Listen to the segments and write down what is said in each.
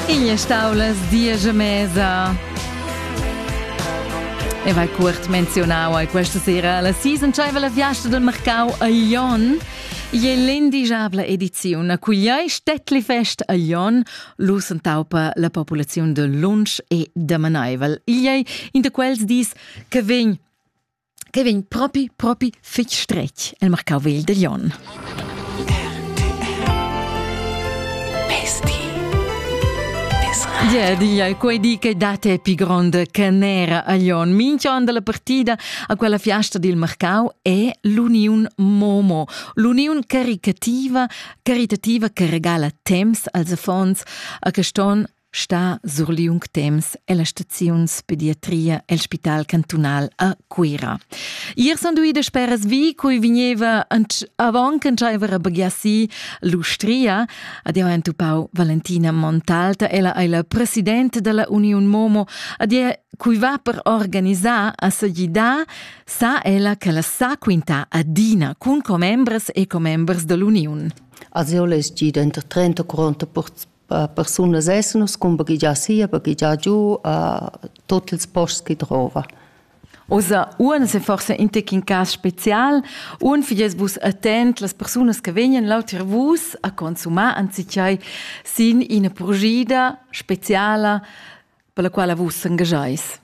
Igl è staulas diesch e mesa. E vai curt menzionau ai questa sera la season tschaiva la fiasta del mercau a Lyon. E l'indigiabla ediziun a cugliai Stettli Fest a Lyon lus entaupa la populaziun de lunsch e damanaivel. Igl è in de quels dis che vegn che vegn propi, propi fitg stretg el marcau vegl de Glion. Yeah, yeah, quei di che date è più grande che nera a Glion. Minchion della partita a quella fiasta dil Marcau è l'uniun Momo, l'uniun caritativa, caritativa che regala temps als affons a che ston stà sur liung temps ella staziun pediatria el Spital cantunal a Cuira. Ier son duide speras vi, cui vigneva avant c'aveva rabaghiassi l'Ustria. Adio entupau Valentina Montalta, ella è la presidente della Union Momo. Adio cui va per organizar a sagidà, sa ella che la sa quinta adina cun commembres e commembres dell'Union. Also es gid enter 30 40 Per persunas essenas cumparegliar sia, baghegiar giu a tot ils posts che drova. Osa uans è forse intec in cas special, un fidies vus attent las persunas che vegnan lauter vus a consumar anzichai sin ina purgida speciala per la quala vus s'engageis?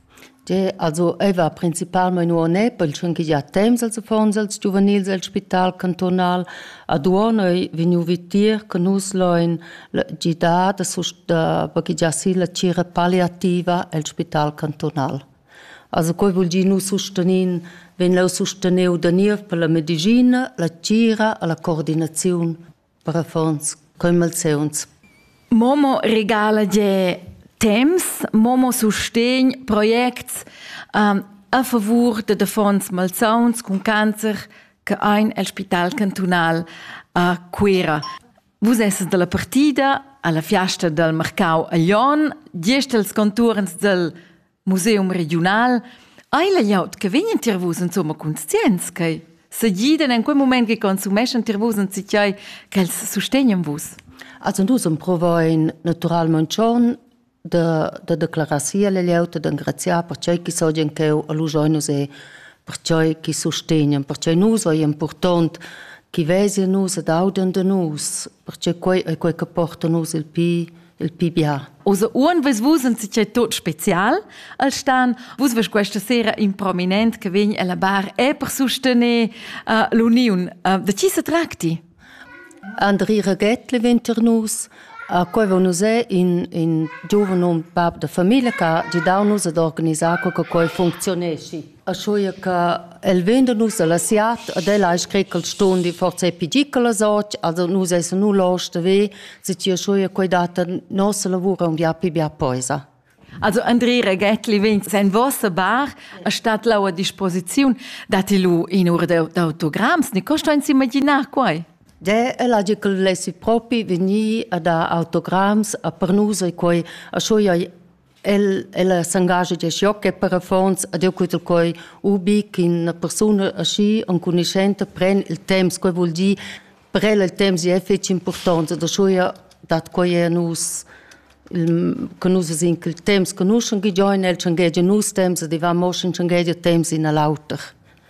Ge, also ei va principalmein uonè pel tschun che gia temps als affons als giuvenils el spital cantonal ad uonei vegniu vitir che nus loin gidar da, da baghegiar la cira palliativa el spital cantonal. Also quei vul dir nu sustenin vegn leu susteniu da niev per la medicina, la cira e la coordinaziun per affons coi malseuns. Momo regala gie temps, Momo sustegn projects um, a favur de defons malsauns cun cancer che ein el spital cantunal a Cuera. Vus esses dalla partida alla fiasta del mercau a Lyon, gest els conturns del Museum regiunal, ei layout che vegn tier vus insomma conscients che segiden en quei moment che consumeschan tier vus en citiai ch'els sustegnan vus? Also dus provoin naturalment schon de, de declarazier le lieute, de engraziar per ciò che so gen cheu a lusoinus e per ciò che sostegnan, per ciò nus è important che vesi nus ed audian de nus, perché quei è quei che porta nus il pi il PBA. Oser uon ves vus in sicei tot spezial al stan, vus ves questa sera in prominent che vegn alla bar è per sustener uh, l'uniun. Uh, de chi se tracti? Andri Regett Leventernus, a cui nus è in, in giovane bab de famiglia che ha dau nus ad organizar che cui funzionesci. Aschia che el vegn da nus alla siat ed el ha scret ch'el ston dir forza e pigi quellas och, also nus essan nu losch da ver, se ti aschia quei data nossa lavura un bia pli bia poisa. Also André Reghettli vegn sen vossa bar a stat lau a disposiziun, dati lu in ur d'autograms, ni costa ins imaginar quai? De, el ha dit che lessi propi venir a dar autograms a per nus e quei a schoi El, el s'engascha gest joc e per affons ad eu cutel quei ubi ch'ina persuna aschi enconuschenta pren il temps, quei vul dir per el il temps è fetg important, da schuia dat quei a nus che nus vesin che il temps conuschen giain el, tschangegia nus temps, e diva mo sch'in tschangegia temps in a l'auter.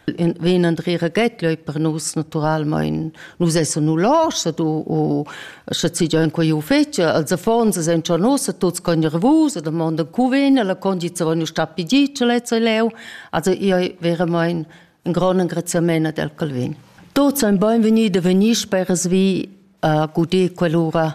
vegn André Reguet leu per nus naturalmein nus essan nu loschs u u sche si già in quei uffici als affons san schon nus tuts con revus e domanda cu vegn la condizione von sta pigi ce lezzo leu also io wäre mein ein gran engraziament del Calvin Tuts ein beinvegni de vegnir speras vi a uh, gudir quell'ura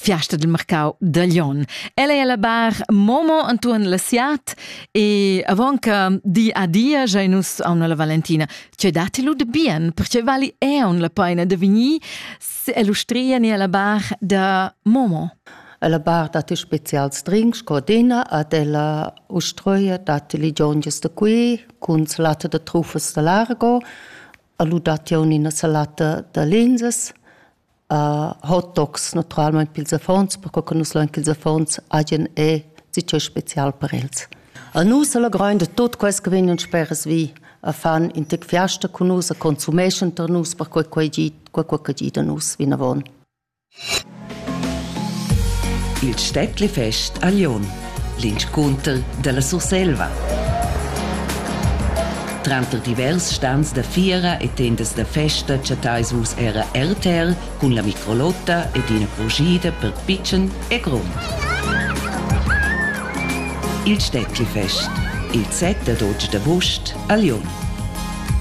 fiasta del mercau da Lyon. Ella è alla bar Momo antuon la siat e avon che di adia giai nus a una la Valentina. Cioè dati lu de bien, perché vali è un la paina de vigni se illustria ni alla bar da Momo. La bar dat specials drinks sco dina ad ella ustroia dat li gionges da qui cun salata de trufas da largo, alu dat io ina salata da linzes hot dogs naturalmain pils affons, perco che nus lein ch'ils affons hagien e sitg special per els. A nus alla grein de tot quels che vegnan speras vi a fan in tec fiasta con nus, a consumeschan tar nus per quei quei gi, quei quei che gi da nus vinavon. Il Städtlefest a Lyon l'inscunter dalla Surselva. Tranter divers stans da fiera e tendas da festa chattais vus era RTL cun la microlotta ed ina crujida per pitschen e grond. Il Städtlifest, il set ad 8 d'avost a Lyon.